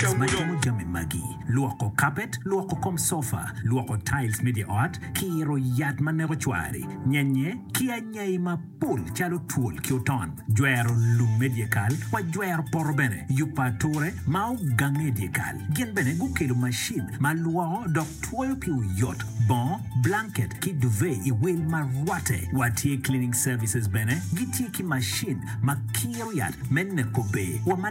Ka watimo jami magi, lwoko kapet, lwoko kom cofa, lwoko tiles me dye ot, kiro yat ma neko cwari, nyenye, ki anyai mapol calo twol ki oton, jwero lum me dyekal, wajwero poto bene, yubo ature ma ogange i dyekal. Gin bene gukelo macin ma lwoko dok twoyo pi oyot, bongo, blanket, ki duvet i wil ma rwatte. Watye Cleaning Services bene gitye ki macin ma kiro yat me neko ber wa ma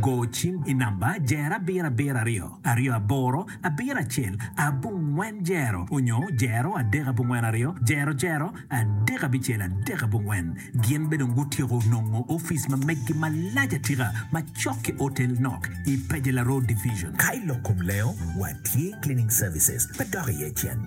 Go cim i namba Jer abiro abiro aryo aryo aboro abiro acel abongwen jero onyo jero adek abongwen aryo jero jero adek abicel adek abongwen. Gin be dong gutyeko nongo office ma meggi malac atika macok ki Otel Nok i Pejela Road Division. Ka i lok kom lengo, watye cleaning services pe dok iye cen.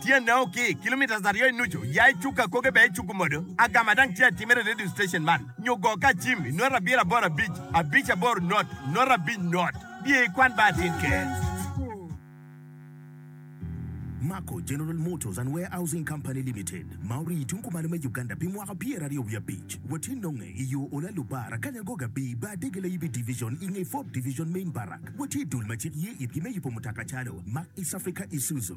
Tyene o ki kilometres aryo i nucu, ya i cuk akoge bene icuku modo. Agama dang tye atimere i radio station man, nyo go ka acim i nota abiro aboro abic, abic aboro not, not abic not. Biye i kwan ba atin ker. Mako General Motors and Warehousing Company Limited ma orii i tung kumalo me Uganda pi mwaka pyera aryo wiye abic. Watye nonge i yo Olalu Bar, Akanya Agog Abi, Bar Dege Layibi Division i nge Fourth Division Main Barrack. Watye i dul ma cik ye itgi me yubo mutoka calo Mack, East Africa, Isuzu.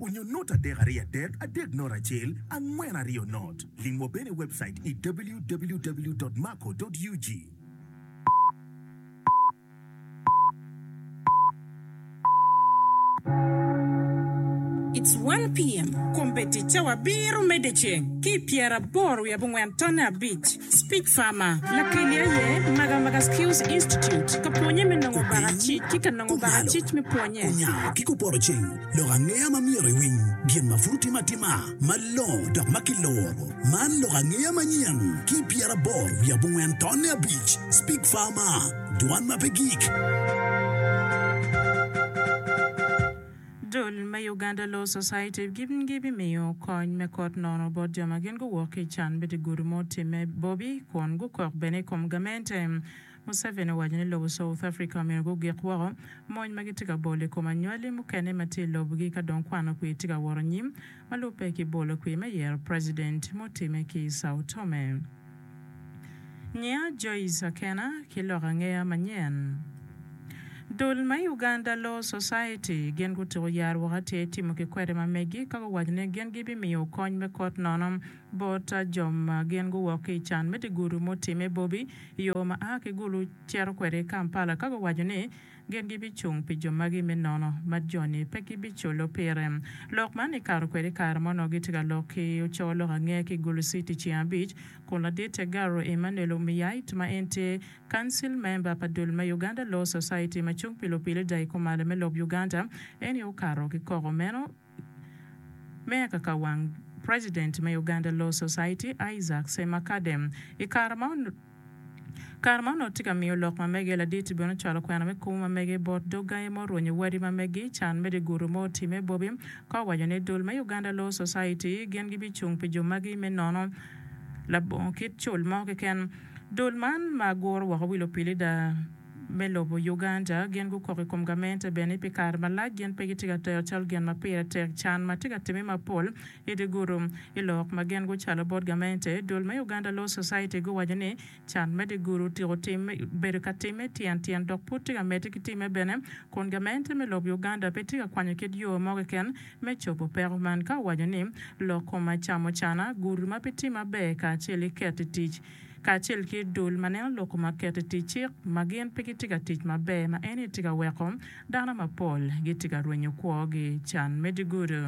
Onyo not adek ariyo adek adek not acel angwen ariyo not. Ling wa bene i webcait i www.maco.ug. It's one PM, Kombe ticca wa biro medde ceng ki i pyera aboro wiye abongwen tonne abic. Speech Farmer, Lakeli aye Magamaga Skills Institute ka pwonye me nongo baka cic ki ka nongo baka cic me pwonye. Onyango ki kupoto ceng. Lok angeya ma myero iwiny gin ma pud otime atima malongo dok ma kiluro. Man lok angeya manyen ki pyeraboro wiye abongwen tonne abic, Speak Farmer, Dwan ma pe gik. Dul me Uganda Law Society gibimiyo kony me kot nono bot jo ma gin guwok ki i can bit i gudu ma otimme Bobi kun gukok bene i kom gamente. Museveni owaco ni lobo South Africa omyero gugik woko mony ma gitye ka bolo i kom anywali mukene ma tye i lobgi ka dong kwano kwir tye ka woro nyim ma lubbe ki bolo kwir me yero president mutimme ki i Sao Tome. Nyiya Joyce Akena ki lok angeya manyen. Dul ma i Uganda Law Society gin gutuko yar woko atir timo ki kwede ma megi ka guwaco ni gin gibimiyo kony me kot nono bot jo ma gin guwok ki i can me dye gudu mutimme bobi i yo ma a ki Gulu cito kwede i Kampala ka guwaco ni gin gibicung pi jo magi me nono ma joni pe gibiculo pire. Lok man kikato kwede i kare ma onongo gitye ka lok ki oco lok ange ki i Gulu City ceng abic kun laditte Garro Emmanuel Omiyait ma en tye Council Member pa dul me Uganda Law Society ma cung pi lupilida i kumalo me lob Uganda en aye okato ki koko meno. Me kaka wang President me Uganda Law Society, Isaac Ssemakadem, i kare ma kare ma onongo tye ka miyo lok ma mege ladit bene ocwalo kwena me kumo ma mege bot dog gangi ma orwenyo wadi ma megi can me dye gutu ma otimme bobi ka owaco ni dul me Uganda Law Society gin gi bi cung pi jo magi me nono labongo kit cul mo keken dul man ma guro woko wi lupilida me lobo Uganda gin gukok i kom gamente bene pi kare malac gin pe gitye ka tero calo gin ma pire tek can ma tye ka timme mapol i dye gudo. I lok ma gin gucalo bot gamente, dul me Uganda Law Society guwaco ni can me dye gudo otyeko bedo ka timme tyen tyen dok pud tye ka medde ki timme bene kun gamente me lob Uganda pe tye ka kwanyo kit yo mo keken me cobo peko man ka owaco ni lok kome acamocana, gudo ma pe tye maber kacel ki keto i tic kacel ki dul ma neno lok ma ket i tic cik ma gin pe gitye ka tic maber ma eni tye ka weko dano mapol gitye ka rwenyo kwogi can me dye-gudo.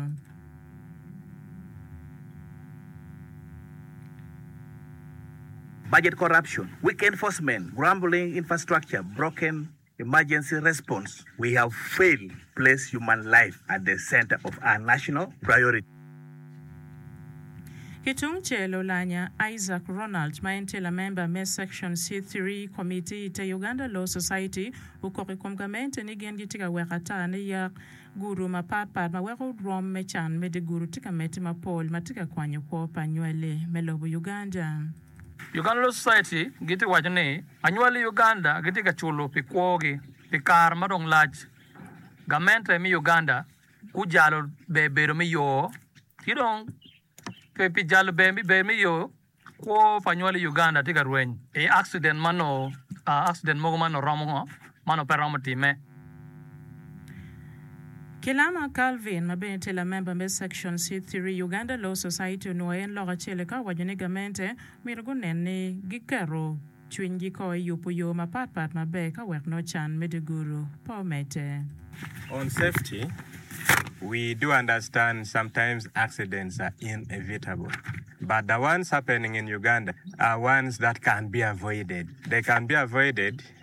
Budget corruption, weak enforcement, grumbling, infrastructure broken. Emergency response, we have failed place human life at the center of our national priority. Ki tung cel, Olanya Isaac Ronald ma en tye lamemba me Section C three Committee i te Uganda Law Society okok i kom gamente ni gin gitye ka weko ata ni yak gudo mapat pat ma weko rwom me can me dye gudo tye ka medde mapol ma tye ka kwanyo kwo pa nywali me lobo Uganda. Uganda Law Society gitye waco ni anywali i Uganda gitye ka culo pi kwogi pi kare ma dong lac. Gamente me Uganda gujalo ber bedo me yo ki dong pe pi jalo ber me bedo me yo kwo pa anywali i Uganda tye ka rweny i accident ma noo accident mogo ma noo romo ngo? Mano pe romo timme. Kilama Calvin, ma bene tye lamemba me Section C3 Uganda Law Society onwoyo en lok acel eka owaco ni gamente myero gunen ni giketo cwinygi ko i yubo yo mapat pat maber ka wek nongo can me dye gudo pe omedde. On safety, we do understand sometimes accidents are inevitable but the ones happening in Uganda are ones that can be avoided, they can be avoided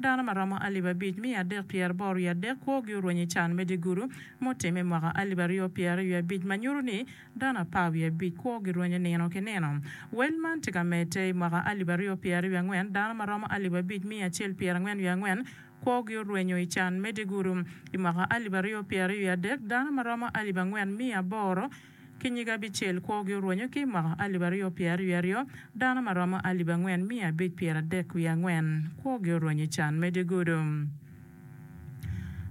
Dano ma romo alip abic miya adek pyeraboro wiye adek kwogi orwenyo i can me dye gudu mutimme i mwaka alip aryo pyeraryo wiye abic ma nyuto ni dano apar wiye abic kwogi rwenyo nino ki nino. Wel man tye ka medde. I mwaka alip aryo pyeraryo wiye angwen, dano ma romo alip abic miya acel pyerangwen wiye angwen kwogi orwenyo i can me dye gudu. I mwaka alip aryo pyeraryo wiye adek, dano ma romo alip angwen miya aboro Ki nyige abicel kwogi orwenyo ki mwaka alip aryo pyeraryo aryo, dano ma romo alip angwen miya abic pyeradek wiye angwen kwogi orwenyo i can me dye gudo.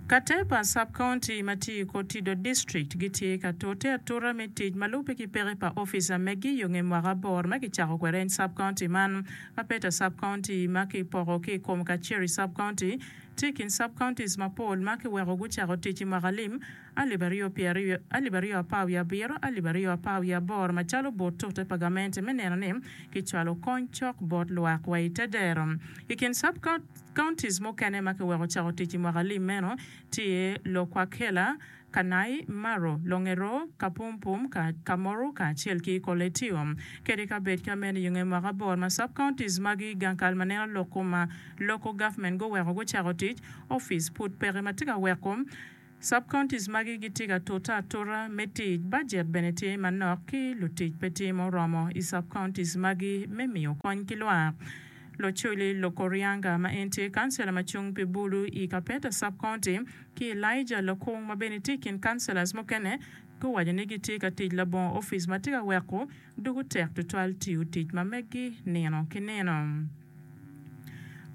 Kate pa Sub County ma tye i kor Tidor District gitye ka tute atuta me tic ma lubbe ki peke pa ofica megi yo nge mwaka aboro ma kicako kwede en Sub County man. Ma Peta Sub County ma ki poko ki i kom Kaceri Sub County tye i kin Sub Counties mapol ma ki weko gucako tic i mwaka alim alip aryo pyeraryo, alip aryo apar wiye abiro, alip aryo apar wiye aboro macalo bot tute pa gamente me neno ni kicwalo kony cok bot lwak wa i te dero. I kin sub counties mukene ma kiweko cako tic i mwaka alim meno tye Lokwakela, Kanai, Maro, Longero, Kapumpum, Kamoru kacel ki Koletio. Kede ka bed ka meno i nge mwaka abor ma sub counties magi gang kal ma neno lok kuma local government goweko gucako tic, office pud peke ma tye ka weko Sub-counties magi gitye ka tute atuta me tic, bajet bene tye manok ki lutic pe tye ma oromo i sub-counties magi me miyo kony ki lwak. Locoli Lokorianga ma en tye kancela ma cung pi Bulu i Kapeta Sub-county ki Elijah Lokung ma bene tye i kin councilors mukene guwaco ni gitye ka tic labongo office ma tye ka weko Doko tek tutwal tiyo tic ma meggi nino ki nino.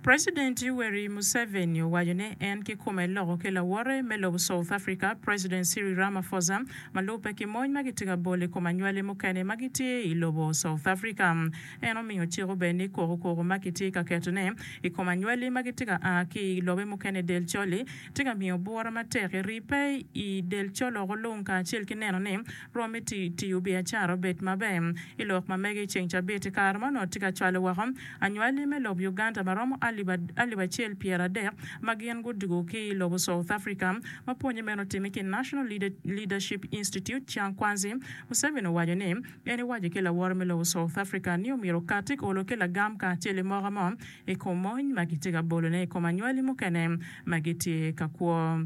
President Yoweri Museveni owaco ni en kikome loko ki lawote me lobo South Africa, President Cyril Ramaphosa, ma lubbe ki mony ma gitye ka bolo i kom anywali mukene ma gitye i lobo South Africa. En omiyo ciko bene ni koko koko ma kitye ka ketone i kom anywali ma gitye ka a ki i lobe mukene i del col-li tye ka miyo bwura matek eri pe i del col oko lung kacel ki neno ni Rom iti tiyo biacara obed maber. I lok ma mege i ceng cabit, kare ma onongo tye ka cwalo woko anywali me lobo Uganda ma romo alip acel pyera adek ma gin gudwogo ki i lobo South Africa ma pwonye meno otime ki National Leadership Institute Chiang Kwanzi, Museveni owaco ni en ewaco ki laworo me lobo South Africa ni omyero okat i olo ki lagam kacel i moko mo i kom mony ma gitye ka bolone i kom anywali mukene ma gitye ka kwo.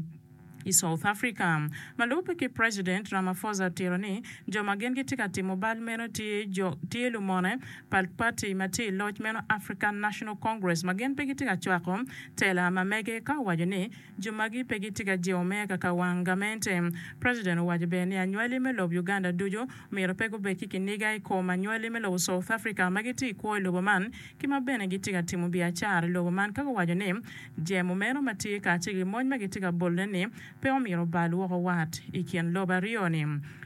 I South Africa, ma lubbe ki President Ramaphosa tiro ni jo ma gin gitye ka timo bal meno tye jo tye lumone pa party ma tye i loc meno African National Congress ma gin pe gitye ka cwako tela ma mege ka owaco ni jo magi pe gitye ka jewo me kaka wang gamente. President owaco bene ni anywali me lob Uganda ducu myero pe gubed ki kiniga i kom anywali me lobo South Africa ma gitye i kwo i lobo man ki ma bene gitye ka timo biacara i lobo man ka guwaco ni Jemo meno ma tye kacel ki mony ma gitye ka bolone-ni pe omyero obal woko wat i kin lobo aryo-ni.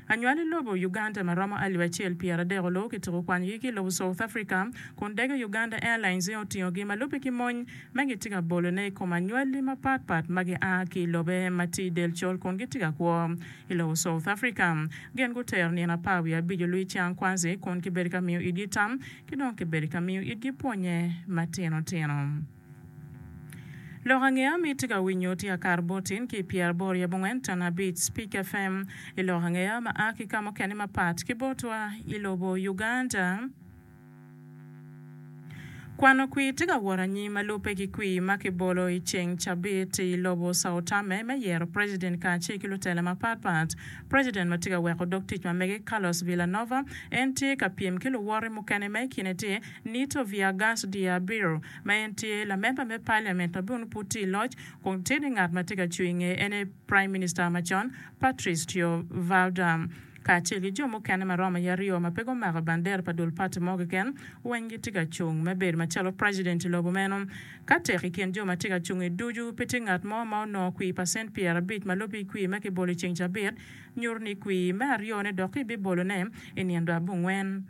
Anywali lobo Uganda ma romo alip acel pyeradek oluwo ki tuku kwanyogi ki i lobo South Africa kun dege Uganda Airlines-e otingogi ma lubbe ki mony ma gitye ka bolone i kom anywali mapat pat ma gia ki i lobe ma tye i del col kun gitye ka kwo i lobo South Africa. Gin gutero nino apar wiye abic olwiny Chiang Kwanzi kun kibedo ka miyo itgi tam ki dong kibedo ka miyo itgi pwonye matino tino. Lok ange ami itye ka winyo tye akar bot in ki pyera aboro yabo ngwen tona abic Speak FM i lok angeya ma a ki ka mukene mapat ki botwa i lobo Uganda. Kwano kwir tye ka wot anyim ma lubbe ki kwir ma ki bolo i ceng cabit i lobo Sao Tame me yero president kacel ki lutela mapat pat. President ma tye ka weko dog tic ma mege Carlos Villanova en tye ka pyem ki luwote mukene ma i kine tye Nito Viergas de Abreu, ma en tye lamemba me paliament ma bene pud tye i loc, kun tye ni ngat ma tye ka cung i ngeye en aye Praim Minista macon, Patricio Valdar, kacel ki jo mukene ma romo i aryo ma pe gumako bandera pa dul pati mo keken, weng gitye ka cung me bedo macalo preciden i lobo meno. Ka tek i kin jo ma tye ka cungi ducu, pe tye ngat mo ma onongo kwir pacent pyerabic ma lubbe i kwir ma kibolo i ceng cabit, nyuto ni kwir me aryone dok kibibolone i nino dwe abongwen.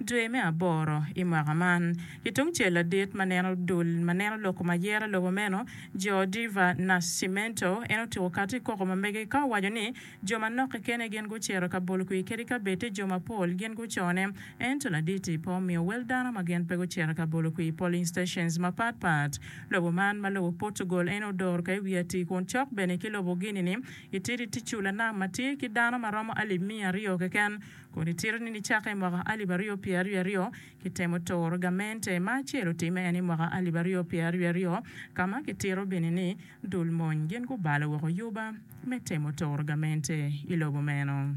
Dwe me aboro i mwaka man, ki tungcel ladit ma neno dul ma neno loko ma yero lobo meno, Joe Diva Nascimento, en otuko kati i koko ma mege ka owaco ni jo manok kekeni gin gucito ka bolo kwir kadi ka bed ti jo mapol gin gucone. Ento ladit-ti pe omiyo wel dano ma gin pe gucito ka bolo kwir i polling stations mapat pat. Lobo man ma lobo Portugal en odoro ka i wi atir kun cok bene ki lobo Guinea-ni, itidi ti cu lanam ma tye ki dano ma romo alip miya aryo keken. Kun icito ni nicake i mwaka alip aryo pye aryo aryo, kitemo turo gamente ma acel otimme en i mwaka alip aryo pye aryo aryo, ka ma kitito bene ni dul mony gin gubalo woko yuba me temo turo gamente i lobo meno.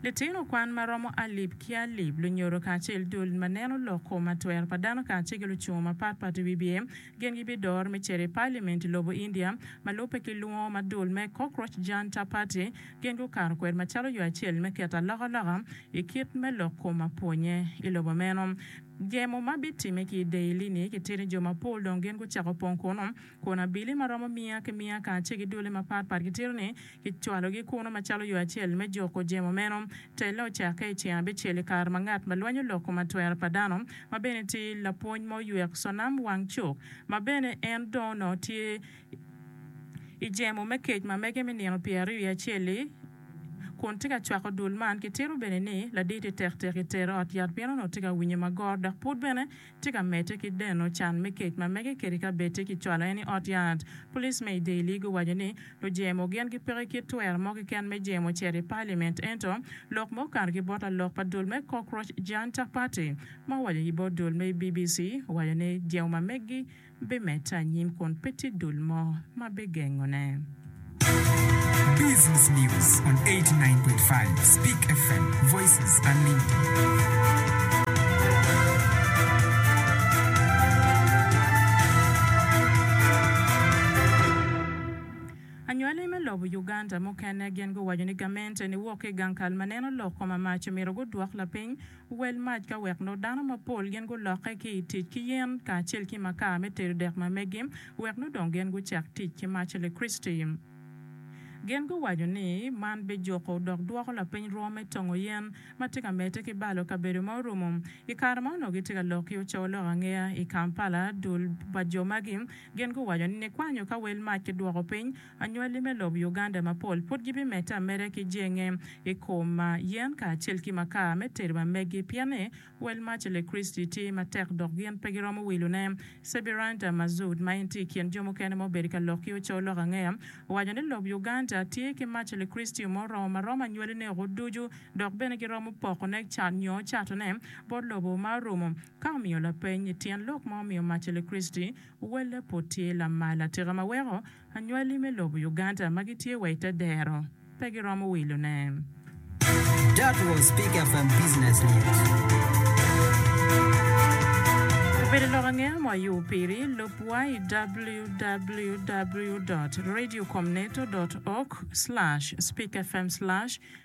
Litino kwan ma romo alip ki alip lunyodo kacel dul ma neno lok kom atwero pa dano kacel ki lucungo mapat pat i wi bye, Gin gibidor me cito i Paliament i lobo India ma lubbe ki lwongo ma dul me Cockroach Janta Party gin gukato kwede macalo yo acel me keto alokaloka i kit me lok kom apwonye i lobo meno. Gemo ma bitimme ki i Daily-ni kitito ni jo mapol dong gin gucako pong kunnu kun abili ma romo miya ki miya kacel ki dule mapatpat gitito ni Kicwalogi kunnu macalo yo acel me juko jemo meno. Telle ocakke i ceng abicel i kare ma ngat ma lwanyo lok kom atwero pa dano, ma bene tye lapwony ma oywek canam wang cuk, ma bene en dong onongo tye i jemo me kec ma mege me nino pyeraryo i acel-li, kun tye ka cwako dul man. Kitito bene ni laditi tektek i ter ot yat pien onongo tye ka winyo magor dok pud bene Tye ka medde ki deno can me kec ma mege kede kabedde ki cwalo en i ot yat. Pulic me i Daly guwaco ni lujemo gin gipeke kit twero mo keken me jemo cito i Paliment ento lok ma okato ki bot lalok pa dul me Cockroach Janta Party ma owaco ki bot dul me BBC owaco ni jemo ma megi bimedde anyim kun pe tye dul mo ma bigengone. Anywali me lobo Uganda mukene gin guwaco ni gamente ni wok ki i gang kal ma neno lok koma mac myero gudwok lapiny. Wel mac ka wek nongo dano mapol gin gulokke ki i tic ki yen kacel ki makaa me tedo dek ma megi, wek nongo dong gin gucak tic ki mac Lakriciti. Gin guwaco ni man bijuko dok dwoko lapeny rwo me tongo yen ma tye ka medde ki balo kabedo ma orumo. I kare ma onongo gitye ka lok ki ocowo lok angeya i Kampala, dul pa jo magi gin guwaco ni nikwanyo ka wel mac kidwoko piny, Anywali me lobo Uganda mapol pud gibimedde ameda ki jenge i kom yen kacel ki makar me tedo ma meggi pien ni wel maca le Kriciti tye matek dok gin pe giromo wilone. Sebiranta Mazood, ma en tye i kin jo mukene ma obedo ka lok ki oco lok angeya, owaco ni lobo Uganda tye ki maca le Kriciti ma oromo ma romo anywali-ne woko ducu dok bene giromo pokone nyo catone bot lobo ma orumo Ka omiyo lapeny, Tyen lok ma omiyo Marcelle Christy owelle pud tye lamal atika ma weko anywali me lobo Uganda ma gitye wa i te dero pe giromo wilone? That was Speaker from Business News. Obedo lok angeya ma wayobo piri. Lubwa i www dot radio com neto dot org slash speakerfm slash.